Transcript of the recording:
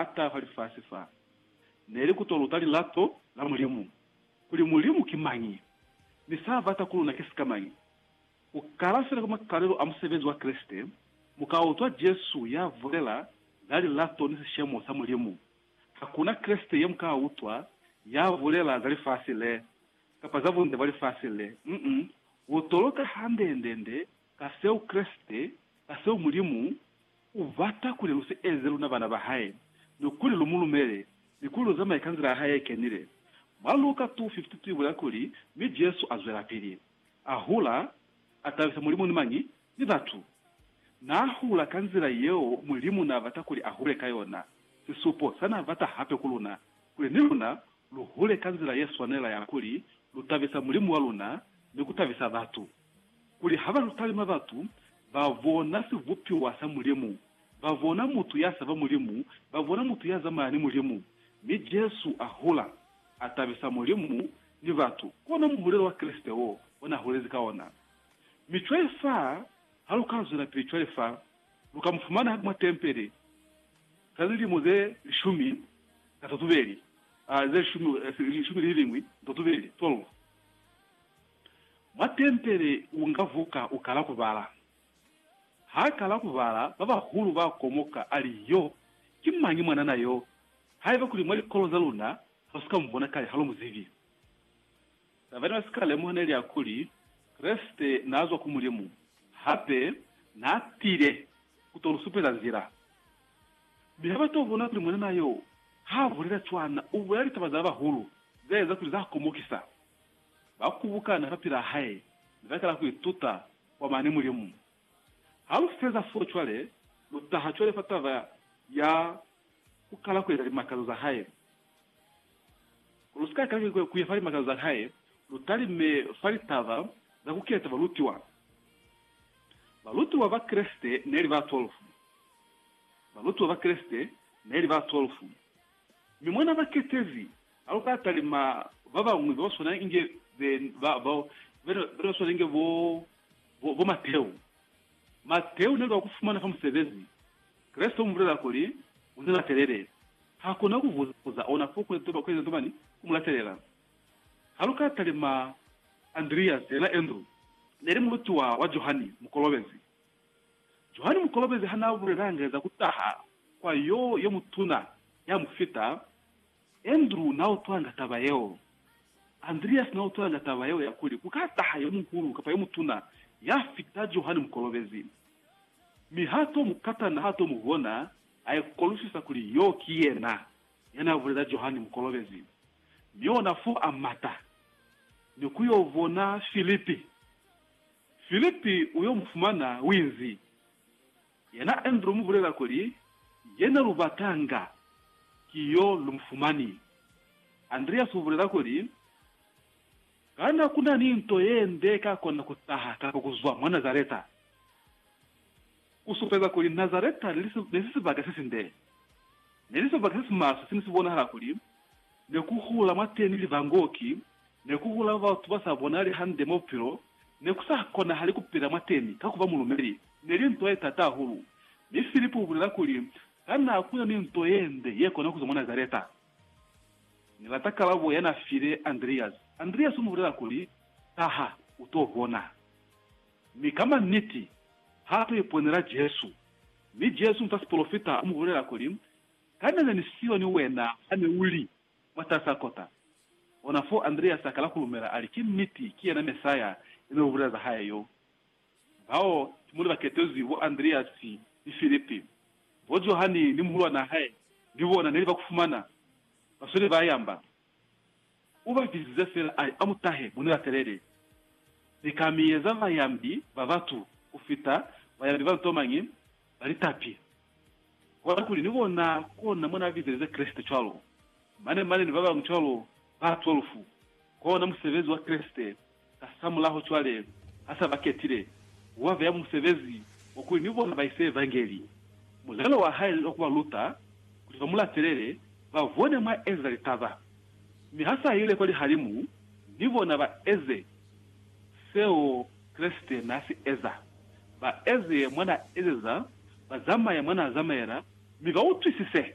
a tayo fa lifasi fa, neli ku to luta lilato la Mulimu, kuli Mulimu ki mañi, mi sa bata ku luna ki sikamañi. Ku kala fela kwa makalelo a musebezi wa Kreste, mu ka utwa Jesu ya bulela za lilato ni sishemo sa Mulimu. Hakuna Kreste ye mu ka utwa ya bulela za lifasi le, kapa za bunde bwa lifasi le. Uh-uh. U to luta hande-nde-nde Ka seo Kreste, ka seo Mulimu, u bata kuli lu si eze luna bana ba hae, mi kuli lu mu lumele, ni kuli lu zamaye ka nzila ya hae ye kenile. Mwa Luka 2:52 i bulela kuli, Mi Jesu a zwelapili a hula, a tabisa Mulimu ni mañi? Ni batu. Naa hula ka nzila yeo Mulimu naa bata kuli a hule ka yona. Sisupo sa naa bata hape ku luna, kuli ni luna lu hule ka nzila ye swanela ya kuli lu tabisa Mulimu wa luna ni ku tabisa batu. kuli ha ba lutalima batu, ba bona sibupiwa sa Mulimu, ba bona mutu ya saba Mulimu, ba bona mutu ya zamaya ni Mulimu. Mi Jesu a hula, a tabisa Mulimu ni batu. Kona muhulelo wa Kreste wo o na hulezi ka ona. Mi cwale fa, ha lu ka zwelapili cwale fa, lu ka mu fumana mwa tempele za lilimo ze lishumi na totubeli, ze lishumi, lishumi lililingwi ni totubeli, 12. Mwa tempele unga vuka ukala kubala. Haakala kubala, babahulu baakomoka, ali, Yo ki mañi mwanana yo? Haiba kuli mwa likolo zaluna halusika mubona kale, halumuzibi. Taba nebasika lemuha neli ya kuli, Kreste naazwa ku Mulimu, hape naatile kuto lusupeza nzila. Mi habato bona kuli mwanana yo haabulela cwana, ubulela litaba za babahulu zeeza kuli zaakomokisa. ba kubukana fapilaa hae mi ba kala ku ituta kwa mane Mulimu. Ha lu feza fo cwale, lu taha cwale fa taba ya ku kala ku eza limakazo za hae. Ku lu si ka kala ku ya fa limakazo za hae, lu talime fa litaba za ku keta balutiwa. Balutiwa ba Kreste ne li ba twelfu. Balutiwa ba Kreste ne li ba twelfu. Mi mwa n'a ba ketezi Haluka talima babañwi babaswana inge be ba bao, bena baswana inge bo bo Mateu. Mateu neli wa kufumana fa musebezi. Kreste umubulela kuli, Unilatelele. Hakuna kuvuza ona fo kueza toba kueza tomani kumulatelela. Haluka talima Andreas, yena Andrew, neli mulutiwa wa Johani Mukolobezi. Johani Mukolobezi hanaabulelanga za kutaha kwa Yo yomutuna yamufita, Andrew n'a utwanga taba yeo. Andreas n'a utwanga taba yeo ya kuli ku ka taha yo muhulu kapa yo mutuna ya fita Johane Mukolobezi. Mi h'a t'o mu kata na h'a t'o mu bona, a ikolusisa kuli yo ki yena ya n'a bulela Johane Mukolobezi. Mi ona f'o a mata ni ku y'o bona Philip. Philip u y'o mu fumana, u inzi. Yena Andrew umubulela kuli, Yena lubatanga ki yo lumufumani. Andreas ubulela kuli, Kana kuna ni nto yende ikakona kutaha kapa kuzwa mwa Nazareta kusupeza kuli Nazareta neli sibaka sesinde? Neli sibaka sesimaswe sene sibonahala kuli Ne ku hula mwateni livangoki, ne ku hula batu ba sa bonali hande mwa bupilo, ne ku sa konahali ku pila mwateni ka ku ba mulumeli. Ne li nto ye t'ata hahulu. Mi Filipo u bulela kuli, Kana ku na ni nto ye nde ye kona ku zwa mwa Nazareta? Ni lata kalabo ya n'a file Andreasi. Andreasi u mu bulela kuli, Taha, u t'o bona. Mi ka manniti, ha t'o iponela Jesu. Mi Jesu, nta sipolofita, u mu bulela kuli, Kana ne ni siyo ni wena hane u li mwatasaa kota? Ona foo Andreasi akala ku lumela, ali, Ki niti, ki yena Mesaya yene lu bulela za hae yo. Bao ki muli ba ketezwi, bo Andreasi ni Filipi. Bo Johani ni muhulwanaa hae, ni bona neli ba ku fumana, ba sweli ba yamba. U ba bizize fela a li, A mu tahe, mu ni latelele. Ni ka mi eza bayambi ba batu ku fita bayambi ba nto mañi, ba litapi. Kona kuli, ni kona, kona mo na bizelize Kreste cwalo, mane, mane ni ba bañwi cwalo, ba 12. Kona musebezi wa Kreste. Kasamulaho cwale ha sa ba ketile ku ba beya musebezi wa kuli ni bona ba ise Evangeli, mulelo wa hae wa ku ba luta kuli ba mu latelele, ba bone mwa ezeza litaba. Mi ha sa ile kwa lihalimu ni bona ba eze seo Kreste n'a si eza, ba eze mwa n'a ezeza, ba zamaye mwa n'a zamaela, mi ba utwisise.